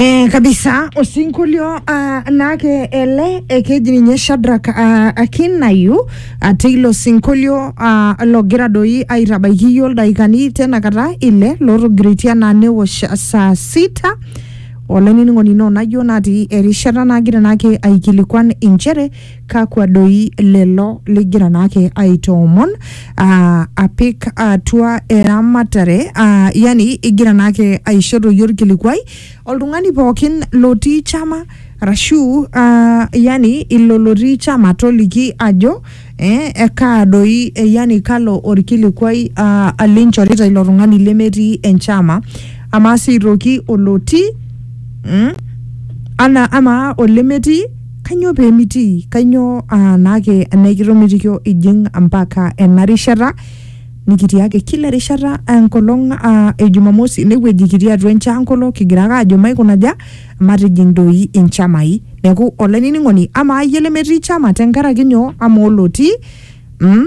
Eh, kabisa osinkolio uh, naake ele eh, keji ninye Shadrack uh, Akinayu uh, teilo sinkolio uh, logira doi aitabaiki iyiook ildaikani tena kata ile lotogiritia naa newosh saa sita olainining'oni ino najo natii erishata nagira naake aikilikuan inchere kakwa doi lelo ligira naake aitoomon aa, apik atua eramatare aa, yani igira naake aisho toi orkilikuai oltung'ani pookin lotii chama arashu aa, yani ilo lotii chama toliki ajo eh, ekaa doi eh, yani kalo orkilikuai aa, linchorita ilo tung'ani lemetii enchama amaa sii aitoki olotii mm, ana amaa olemetii Kanyoo pee mitii? Kanyoo aa naake naikitomitikio ijing mpaka ena rishata nikitii ake kila erishata enkolong aa e Jumamosi inewueji kitii atua enchankolo kigira ake aajo maikunaja matijing doi inchamai. Neeku olainining'oni amaa iyie lemetii chama tenkaraki nyoo amaa olotii mm,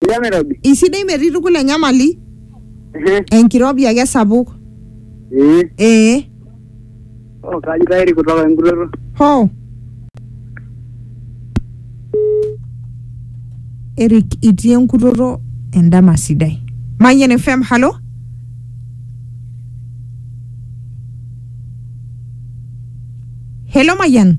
Sidai enairobi. Isidai metii tukul enyamali, Ehe. enkirobi ake esapuk. Ee. Ee. Oh, kaji tayari kutoka enkutoto. Hoo. Eric itii enkutoto endama sidai. Mayian FM, halo? Hello Mayian.